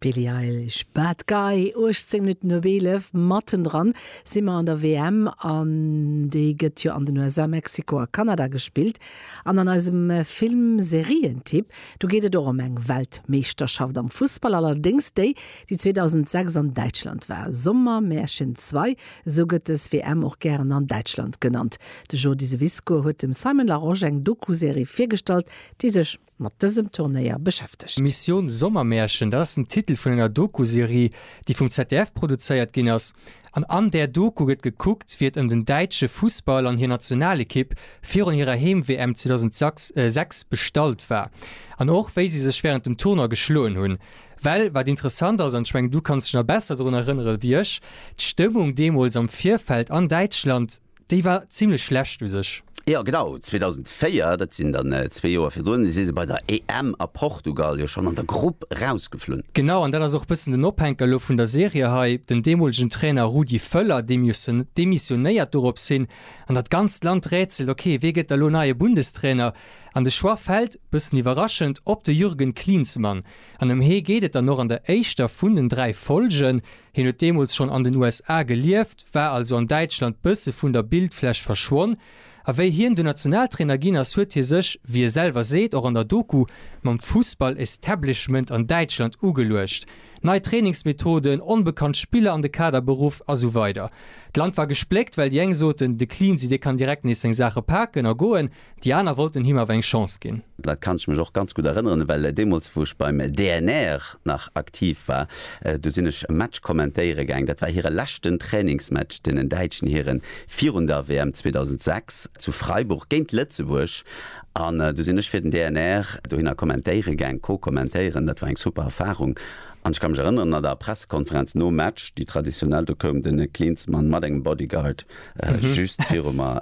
Billie Eilish, Bad Guy, 18 Minutten op 11. Mattendran si mer an der WM an déi gëtt jo an den USA, Mexiko a Kanada gespillt. An an eisem Film-Serien-Tipp, do geet et och ëm eng Weltmeeschterschaft am Fussball, allerdéngs déi, déi 2006 an Däitschland war. Sommermärchen ii, esou gëtt dës WM och gären an Däitschland genannt. De Jordi Seviscoe huet dem Simon Larosche eng Doku-Serie virgestallt, déi sech. mat dësem Turnéier beschäftegt. Mission Sommermärchen, dat ass den Titel vun enger Doku-Serie, déi vum ZDF produzéiert ginn ass. An an där Doku gëtt gekuckt, wéi et ëm den däitsche Fussball an hir Nationalekipp virun hirer Heem-WM 2006 bestallt war. An och, wéi si sech wärend dem Tournoi geschloen hunn. Well wat interessant ass, an ech mengen, du kanns dech nach besser drun erënnere wéi ech, d'Stëmmung deemools am Virfeld an Däitschland, Déi war zimlech schlecht u sech. Jo genau, 2004, dat sinn dann zwee Joer virdrun, si se bei der EM a Portugal jo schonn an der Grupp rausgeflunn. Genau, an dat ass och e bëssen den Ophänker elo vun der Serie hei, den deemolegen Trainer Rudi Völler, dee demissionéiert dorops hin, an dat ganzt Land rätselt, ok, wee gëtt da lo neie Bundestrainer? An de Choix fält, bëssen iwwerraschend, op de Jürgen Klinsmann. An ëm hee geet et dann och an der éischter vun den dräi Folgen. Hien huet deemools schonn an den USA gelieft, war also an Däitschland bësse vun der Bildfläch verschwonn. A wéi hien dunn Nationaltrainer ginn ass, huet hie sech, wéi e selwer seet, och an der Doku, mam Fussball-Establishment an Däitschland ugeluecht. Nei Trainingsmethoden, onbekannt Spiller an de Kader beruff a sou weider. D'Land war gespléckt, well déi eng soten, de Cleansy dee kann direkt nees seng Saache paken a goen. Déi aner wollten him awer eng Chance ginn. Dat kann ech mech och ganz gutt erënneren, well deemools wou ech beim DNR nach aktiv war, do sinn ech e Match kommentéiere gaang. Dat war hire leschten Trainingsmatch, deenen däitschen Hiren, virun der WM 2006 zu Freiburg géint Lëtzebuerg. An du sinn ech fir den DNR dohinner kommentéiere gaang, co-kommentéieren. Dat war eng super Erfarung. An ech ka mech erënneren, an der Pressekonferenz nom Match, déi traditionell, do koum de Klinsmann mat engem Bodyguard Just viru mer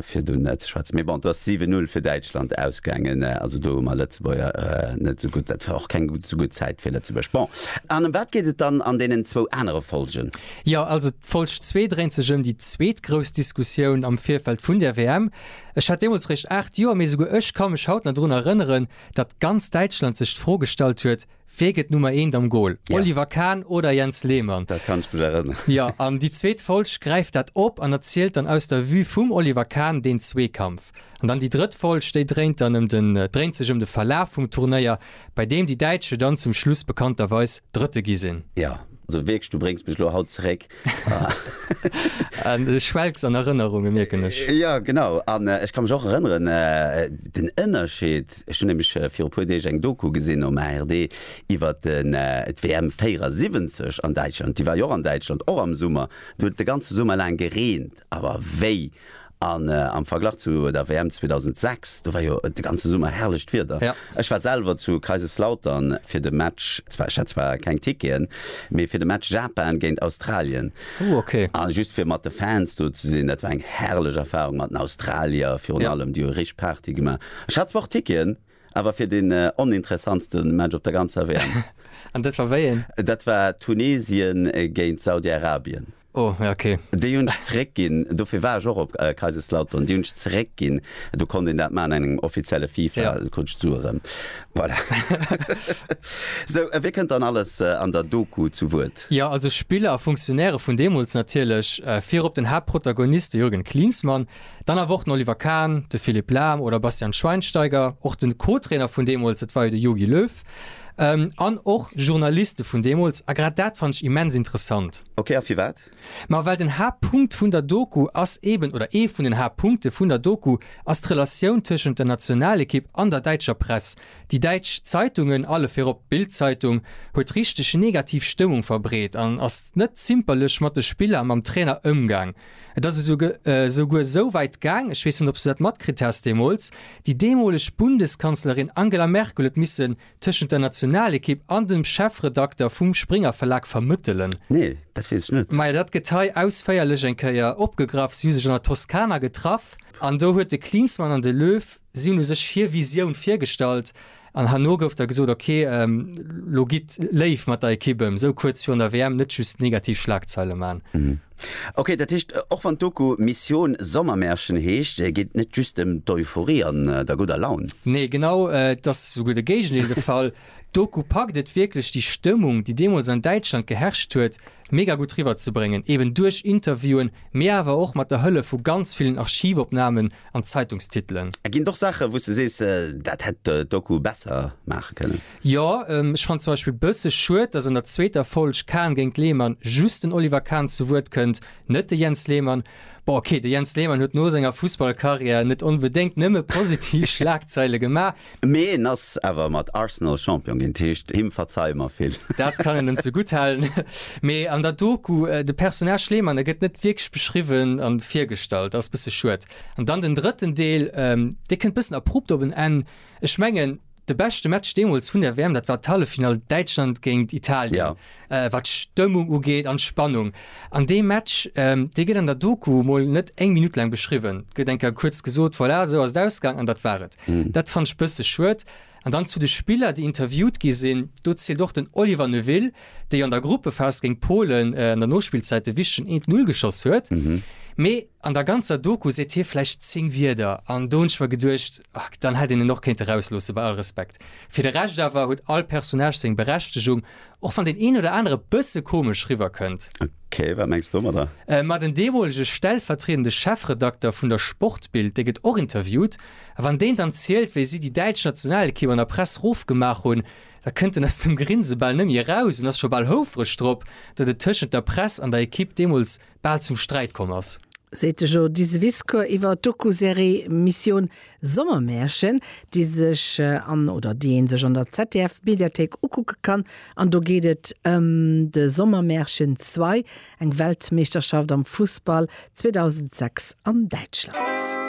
fir do net ze schwätzen. Mee bon, et ass 7-0 fir Däitschland ausgaangen. Also do hu mer Lëtzebuerger net esou gutt, dat war och keng esou gutt Zäit fir Lëtzebuerg. Bon, an ëm wat geet et dann an deenen zwou anere Folgen? Jo, also d'Folg zwee dréint sech ëm déi zweet grouss Diskussioun am Virfeld vun der WM. Ech hat deemools réischt 8 Joer, mee esouguer ech ka mech haut nach drun erënneren, datt ganz Däitschland sech d'Fro gestallt huet, Wee gëtt Nummer eent am Gol? Ja. Oliver Kahn oder Jens Lehmann? Dat kann ech mech erënneren. Jo, an déi zweet Folg gräift dat op an erzielt dann aus der Vue vum Oliver Kahn deen Zweekampf. An dann déi drëtt Folg, déi dréint dann ëm den, dréint sech ëm de Verlaf vum Turnéier, bei deem déi Däitsche dann zum Schluss bekannterweis Drëtte gi sinn. Jo, also wierklech, du bréngs mech elo haut zeréck Du schwelgs an Erënnerungen, mierken ech. Jo, genau. An ech ka mech och erënneren, den Ënnerscheed, ech hunn nämlech viru e puer Deeg eng Doku gesinn um ARD iwwer d'WM 74 an Däitschland, déi war jo och an Däitschland, och am Summer. Do huet et de ganze Summer laang gereent. Awer wéi! An am Verglach zu der WM 2006, do war jo de ganze Summer herrlecht Wieder. Ech war selwer zu Kaiserslautern fir de Match, zwar ech hat zwar keng Ticketen, mee fir de Match Japan géint Australien. Ooh ok. A just fir mat de Fans do ze sinn, dat war eng herrlech Erfarung mat den Australier virun allem, déi hu richteg Party gemaach. Ech hat zwar och Ticketen, Awer fir den oninteressantste Match op der ganzer WM. An dat war wéi een? Dat war Tunesien géint Saudi-Arabien. Oh, ja ok. Déi hunn ech zeréckginn, dofir war ech och op Kaiserslautern. Déi hunn ech zeréckginn, do konnt een dat maachen an engem offizielle FIFA, do krut ech d'Sue erëm. Voilà. Sou, wie kënnt dann alles an der Doku zu Wuert? Jo, also Spiller a Funktionäre vun deemools natierlech, virop den Haaptprotagonist, de Jürgen Klinsmann. Dann awer och den Oliver Kahn, de Philipp Lahm oder Bastian Schweinsteiger, och de Co-Trainer vun deemools, et war jo de Jogi Löw, an och Journaliste vun deemools. A grad dat fannt ech immens interessant. Ok, a firwat? Ma well den Haaptpunkt vun der Doku ass eeben, oder ee vun den Haaptpunkte vun der Doku ass d'Relatioun tëschent der Nationalekipp an der däitscher Press. Déi däitsch Zeitungen, alle virop d'Bild-Zeitung, huet richteg negativ Stëmmung verbreet an ass net zimperlech mat de Spiller a mam Trainer ëmgaang. Et ass esouguer esou wäit gaang, ech weess net, ob s du dat matkritt has deemools, déi deemoleg Bundeskanzlerin Angela Merkel huet missen tëschent der Nationalekipp an dem Chefredakter vum Springer-Verlag vermëttelen. Nee, dat weess ech net. Majo, dat gëtt hei ausféierlech eng Kéier opgegraff. Si hu sech an der Toskana getraff an do huet de Klinsmann an de Löw, si hunn u sech hir Visioun virgestallt. An herno gouf da gesot, ok, lo gitt léif mat der Ekipp ëm, esou kuerz virun der WM net just negativ Schlagzeile man. Ok, dat heescht, och wann d'Doku Mission Sommermärchen heescht, geet et net just ëm d'Euphorie an der gudder Laun. Nee, genau, et ass esouguer de Géigendeel de Fall. D'Doku packt et wierklech, déi Stëmmung, déi deemools an Däitschland geherrscht huet, mega gutt riwwerzebréngen, eben duerch Interviewen, mee awer och mat der Hëllef vu ganz villen Archivopnamen an d'Zeitungstitelen. Ginn et och Saachen, wou s de sees, dat hätt d'Doku besser maache kënnen? Jo. Ech fannen zum Beispill bësse schued, dass an der zweeter Folg Kahn géint Lehmann just den Oliver Kahn zu Wuert kënnt, net de Jens Lehmann. Bon, ok, de Jens Lehmann huet no senger Fussballcarrière net onbedéngt nëmme positiv Schlagzeile gemaach, Mee en ass awer mat Arsenal Champion ginn, heescht him verzeie mer vill. Dat kann een em zegutt halen. Mee an der Doku, de Personnage Lehmann, e gëtt net wierklech beschriwwen a virgestallt, ass bësse schued. An dann den drëtten Deel, dee kënnt bëssen abrupt op en Enn. Ech mengen, de beschte Match deemools vun der WM, dat war d'Halleffinall Däitschland géint Italien, wat d'Stëmmung ugeet an d'Spannung. An dee Match, dee gëtt an der Doku mol net eng Minutt laang beschriwwen, gëtt eng Kéier kuerz gesot, voilà, esou ass et ausgaang an dat war et. Dat fannt ech bësse schued. An dann zu de Spiller déi interviewt gi sinn, do zielt och den Oliver Neuville, dee jo an der Gruppephas géint Polen an der Nospillzäit de wichtegen 1 Null geschoss huet. Mee an der ganzer Doku seet hie vläicht 10 Wierder an do hunn ech mer geduecht, dann hätt een en och kéint erausloossen, bei all Respekt. Fir de Rescht awer huet all Personnage seng Berechtegung Och wann deen een oder anere e bësse komesch riwwer kënnt. Ok, wat mengs du domadder? Ma den deemolege stellvertriedende Chefredakter vun der Sportbild, dee gëtt och interviewt. A wann deen dann zielt, wéi si déi däitsch Nationalekipp an der Press rof gemaach hunn, da kënnt en aus dem Grinse bal net méi eraus an ass scho bal houfreg drop, datt et tëschent der Press an der Ekipp deemools bal zum Sträit komm ass. Seet de Joe Diseviscourt iwwer d'Doku-Serie Mission Sommermärchen, déi sech an oder déi ee sech an der ZDF-Mediathéik ukucke kann. An do geet et ëm de Sommermärchen Zwei, eng Weltmeeschterschaft am Fussball 2006 an Däitschland.